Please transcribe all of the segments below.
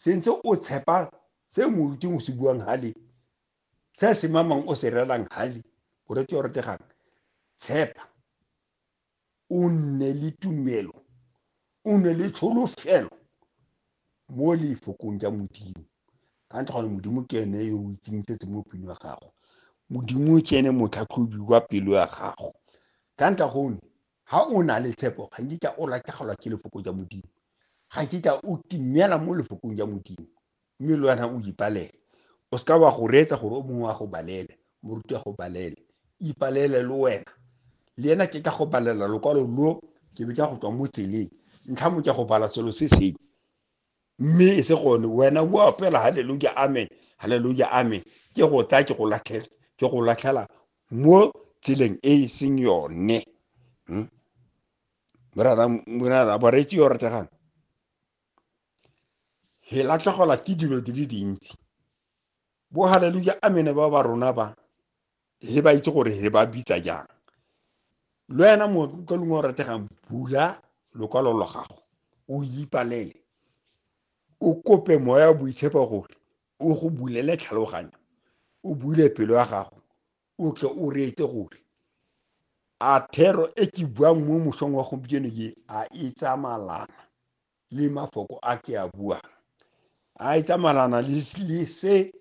se ntse o tshepa se moruting o se buang hale se se mamang o se relang hale o rete o retegang tshepa o nne le tumelo o nne le tsholofelo mo lefokong ja modimo ka ntle gone modimo ke ene yo o itseng setse mo pelo ya gago modimo ke ene motlhatlhobi wa pelo ya gago ka ntle gone Ga o na le tshepo, ga nkitla o latlhegelwa ke Lefoko ja Modimo. Ga nkitla o timela mo Lefokong ja Modimo, mme le wena o ipalele. O seka wa go reetsa gore o mongwe a go balele, moruti a go balele. Ipalele le wena. Le ena ke tla go balela lokwalo lo, ke be ke ya go tswa mo tseleng. Ntlha mo ke go bala selo se seng. mme e se gone wena o apela haleluja amen haleluja amen ke go tsaya ke go latlhela ke go latlhela mo tseleng e e seng yone hmm? morara bareetsi yo rategang he latlhegelwa ke dilo di le dintsi bo haleluja amene ba ba rona ba he ba itse gore he ba bitsa jang le wena ka lengwe o rategang bula lokwalo lwa gago o ipalele o kope moya wa boitshepo gore o go bulele tlhaloganyo o bule pelo ya gago o tle o reetse gore a thero e ke buang mo mosong wa gompieno ye a e tsamalana le mafoko a ke a buang a e tsamalana le se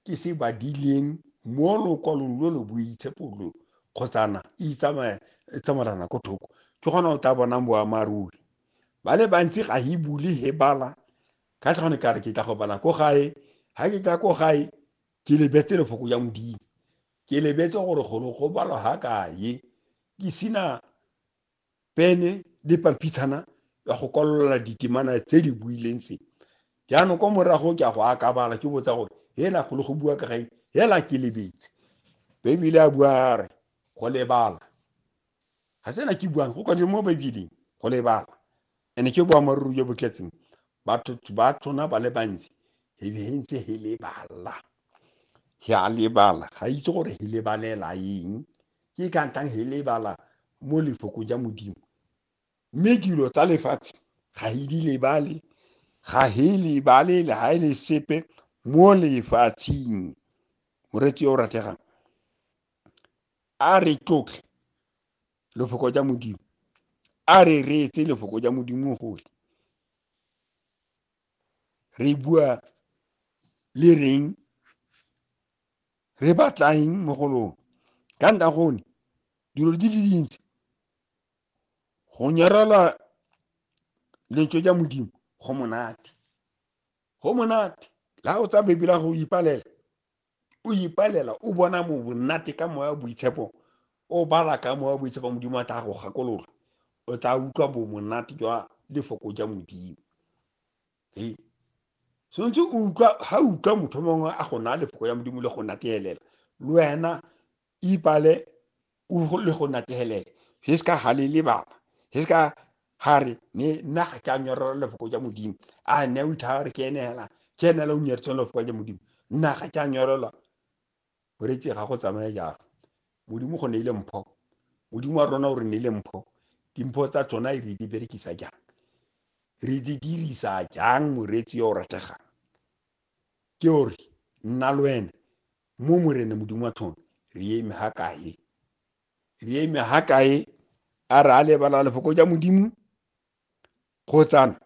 ke se badileng mo lokwalong lo lo boitshepo lo kgotsana e tsamalana ko thoko ke gona o tla bonang boammaaruri ba le bantsi ga e bule he bala ka tlhone ka re ke tla go bala ko gae ga ke tla ko gae ke lebetse lefoko ya modimo ke lebetse gore golo go balwa ga kae ke sena pene le pampitshana ya go kwalola ditemana tse di buileng tse jaanong kwa morago ke a go akabala ke botsa gore hela golo go bua ka gaeng hela ke lebetse baebile a bua a re go lebala ga sena ke buang go kwadile mo baebeleng go lebala Ene ke boammaaruri jo bo tletseng batho ba tsona ba le bantsi he ntse he lebala he a lebala ga itse gore he lebalela eng ke ka ntang he lebala mo lefoko ja modimo mme dilo tsa lefatshe ga he di lebale ga he lebale le ga e le sepe mo lefatsheng moreetsi yo o rategang a re tlotlhe lefoko ja modimo a re reetse lefoko ja modimo gole re bua le reng re batlaeng mo go lone ka nta gone dilo di le dintsi go nyarela lentswe ja modimo go monate go monate la o tsa bebela go ipalela o ipalela o bona mo bonnate ka moya boitshepo o bala ka moya boitshepo modimo a tla go gakolola o tla utlwa bo monate jwa lefoko ja modimo e tshwanetse o utlwa ga utlwa motho mongwe a go naya lefoko ya modimo le go nateelela le wena ibale o le go nategelele ge se ka halele baba ge se ka gare ne nna ga ke a nyorela lefoko ja modimo a ne o ithaga re ke enela ke enela o nyeretseng lefoko ja modimo nna ga ke a nyorela o retse ga go tsamaya jalo modimo go ne ile mpho modimo wa rona o re ne ile mpho dimpho tsa tsona re di berekisa jang re di dirisa jang moreetsi yo o rategang ke ore nna le wena Mo Morena Modimo wa tlhono, re eme ha kae? Re eme ha kae? A re a lebala lefoko ja Modimo? Kgotsana,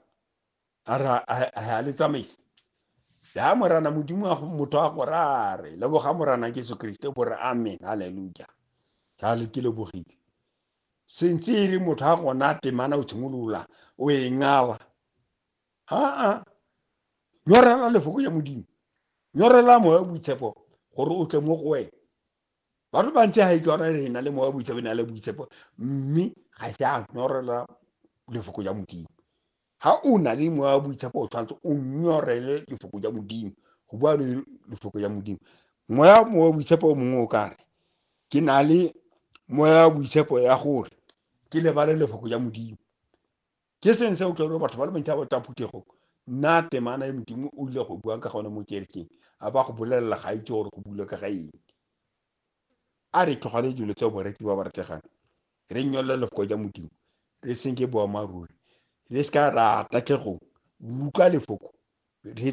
a re a le tsamaisa? Ya Morana Modimo wa motho a gore a re, leboga Morana Jesu Kriste, bo re amen, haleluja. Ga le ke lebogile. Sentse e re motho a gona temana o tshimolola, o e ngala. Aa, nyorela lefoko ya Modimo. Nyorela moya wa boitshepo gore o tle mo go wena. Batho bantsi ga itse gore re na le moya wa boitshepo, na le boitshepo, mme ga se a nyorela lefoko ya Modimo. Ha o na le moya wa boitshepo o tshwanetse o nyorele lefoko ya Modimo, go bua le lefoko ya Modimo. Moya moya wa boitshepo o mongwe o kare ke na le moya wa boitshepo ya gore ke lebale lefoko ya Modimo. ke seng se o tla batho ba le bantsi ba ba tswa phuthegong nna temana e modimo o ile go buang ka gone mo kerekeng a ba go bolelela ga itse gore go bule ka ga eng a re tlogale dilo tse boreki ba ba rategang re nyolole lefoko ja modimo re senke boammaaruri re se ka ra tatlhegong utlwa lefoko re tse